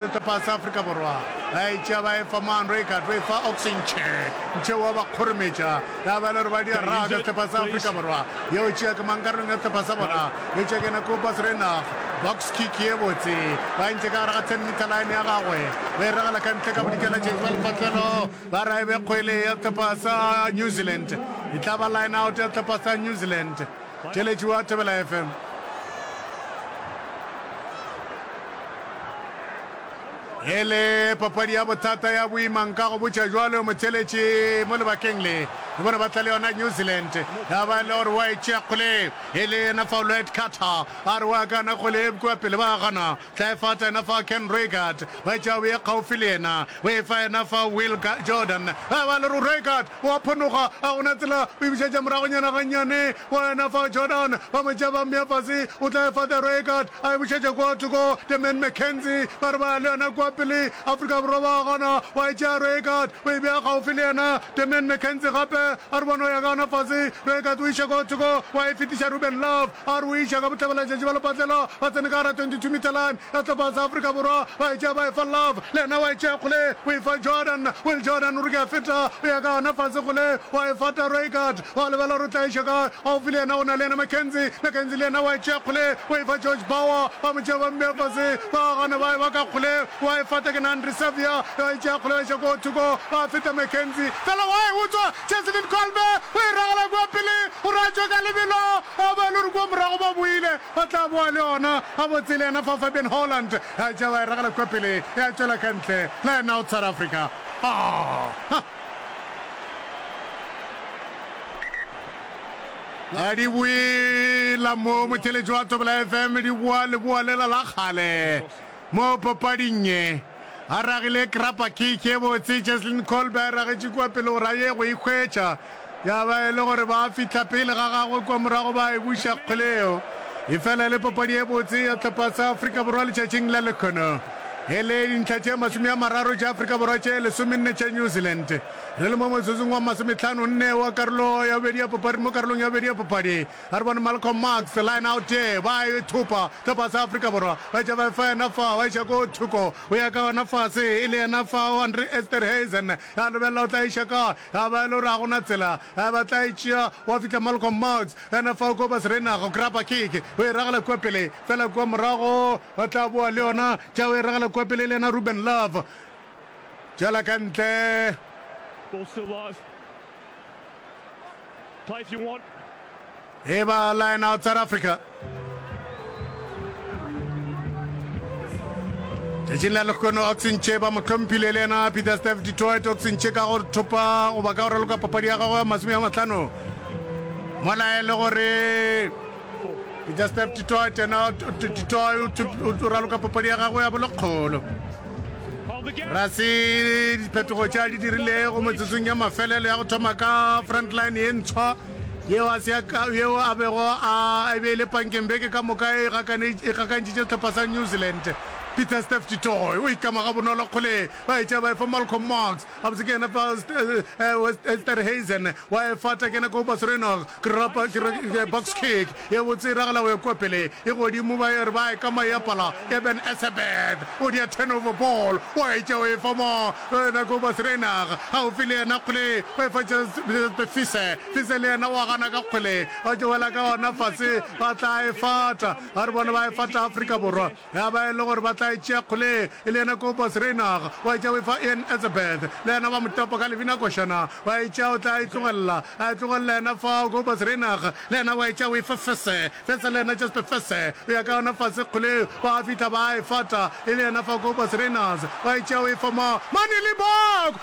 Setepa sa Afrika Borwa ba e tšea ba e fa Moan Reichardt, o e fa Oxy Nche. Nche o a ba kgorometša, ya ba e le gore ba di raga setepa sa Afrika Borwa. Ye o tšea ke mang karolong ya setepa sa bona? Eupša ke yena Kobus Reinach. Box kick ye botse, ba entše ka gare ga ten metre line ya gagwe, ba e ragela ka ntle ka bodikeletšeng bja lepatlelo. Ba re e be kgwele ya setepa sa New Zealand, e tla ba line-out ya setepa sa New Zealand. Theeletši wa Thobela FM. E le papadi ya bothata ya boima nka go botša jwalo motheeletši mo lebakeng le le bona ba tla le yona New Zealand ya ba le gore wa e tšea kgole e le yena Faulette Carter a re wa kana kgole e bkoa pele ba gana Tla e fata yena fa Ken Reigard, ba e tšea o ye kgaufsi le yena, o e fa yena fa Will Jordan, ba ba le ro Reigard o a phonoga, ga go na tsela, o e bušetša moragonyana gannyane go yena fa Jordan, ba mo tšea ba mmea fase, o tla e fa the Reigard, a e bušetša kua thoko the man McKenzie, ba re ba ya le yona kua pele, Afrika Borwa ba gana, wa e tšea Reigard, o e bea kgaufsi le yena the man McKenzie gape, a re bona o ya gana fase, Reigard o iša kua thoko, wa e fetiša Ruben Love, A re o iša ka bohlabelaletšatši ba lepatlelo, ba tsene ka gara 22 meter line ya sehlopha sa Afrika Borwa, ba e tšea ba e fa Love, le yena wa e tšea kgole o e fa Jordan. Will Jordan o re ke a feta, o ya ka gona fase kgole wa e fa Taro Eckert, wa lebala gore o tla iša kae, gaufi le yena go na le yena Mackenzie, Mackenzie le yena wa e tšea kgole o e fa George Bauer, ba mo tšea ba mmeya fase, ba gana ba e ba ka kgole wa e fata ke Nandri Saviour, yo a e tšea kgole wa iša koo thoko, ba feta Mackenzie, fela wa e utswa, Cheslin Kolbe o e ragela kua pele, o ratšwe ka lebelo, a ba e le gore kua morago ba boile, ba tla boa le ona gabotse le yena fa Fabian Holland a tšea ba e ragela kua pele, ya tšwela ka ntle, line out South Africa. Aa! A di boela mo motheletši wa Thobela FM, di boa leboa lela la kgale mo papading ye. A ragile krapa kick ye botse, Cheslin Kolbe a e ragetše kua pele gore a ye go e hwetša, ya ba e le gore ba fihla pele ga gagwe kua morago ba e buša kgole yeo. E fela e le papadi ye botse ya sehlopha sa Afrika Borwa letšatšing la lekhono. E le dintlha tše masome a mararo tša Afrika Borwa tše lesomenne tša New Zealand. Re le mo motsotsong wa masometlhano nne wa karolo ya bobedi ya papadi mo karolong ya bobedi ya papadi, A re bone Malcolm Marx, line out there, ba e thopa ka fase ga Afrika Borwa, ba etša ba e fa yena fa, wa iša ko thoko, o ya ka yona fase, e le yena fa o Andre Esterhazen, ya lebelela o tla iša kae, ya ba e le gore ga gona tsela, ya ba tla e tšea, wa fihla Malcolm Marx, yena fa o ko ba serenaga, o grabba kick, o e ragela kua pele, fela kua morago, o tla boa le yona, tša o e ragela kua pele, e le yena Ruben Love, tšela ka ntle. Ball still live. E ba line out South Africa. Tšatšing la lekgono Oxenche ba mo tlhomphile le yena Peter Steph Detroit Oxenche ka go thopa goba ka go raloka papadi ya gagwe ya masome ya matlhano mola e le gore Jastep Titoy tena Titoy o raloka papadi ya gagwe ya bolokgolo ra se diphetogo tša di dirilego metsotsong ya mafelelo ya go thoma ka frontline e ntshwa yeo a bego a e be e le pankeng beke ka moka e gakantšitše sehlopha sa new zealand peter stef titoy o ikama ga bonolo kgole ba etša ba efa malcolm marks Gabotse ke yena fa Esterhuizen wa e fata kena ko Basrenog krapa box kick ye botse e ragala go ya kwa pele e godimo ba e re ba e ka mayapala ya Ben Esebeth o dia turnover ball wa e tšeo e fa mo yena ko Basrenog ga o file yena kgole o e fa Fise Fise le yena wa gana ka kgole ba tšewela ka ona fase ba tla e fata ba re bona ba e fata Afrika Borwa Ya ba e le gore ba tla e tšea kgole e le yena Kobus Reinagh, wa etša o e fa Ian Etzebeth, le yena ba mo topa ka lebina košana, wa e tšea o tla e tlogelela, a e tlogelela yena fao Kobus Reinagh, le yena wa e tšea o e fa Fese, Fese le yena Jasper Fese, o ya ka yona fase kgole, ba fihla ba a e fata e le yena fa Kobus Reinagh, wa e tšea o e fa ma, Mane Libbok!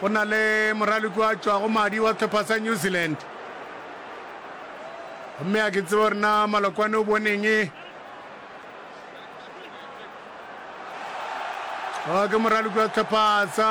Go na le moraloki a tšwago madi wa sehlopha sa New Zealand, gomme a ke tsebe gore na Malokwane o boneng. Ke moraloki wa sehlopha sa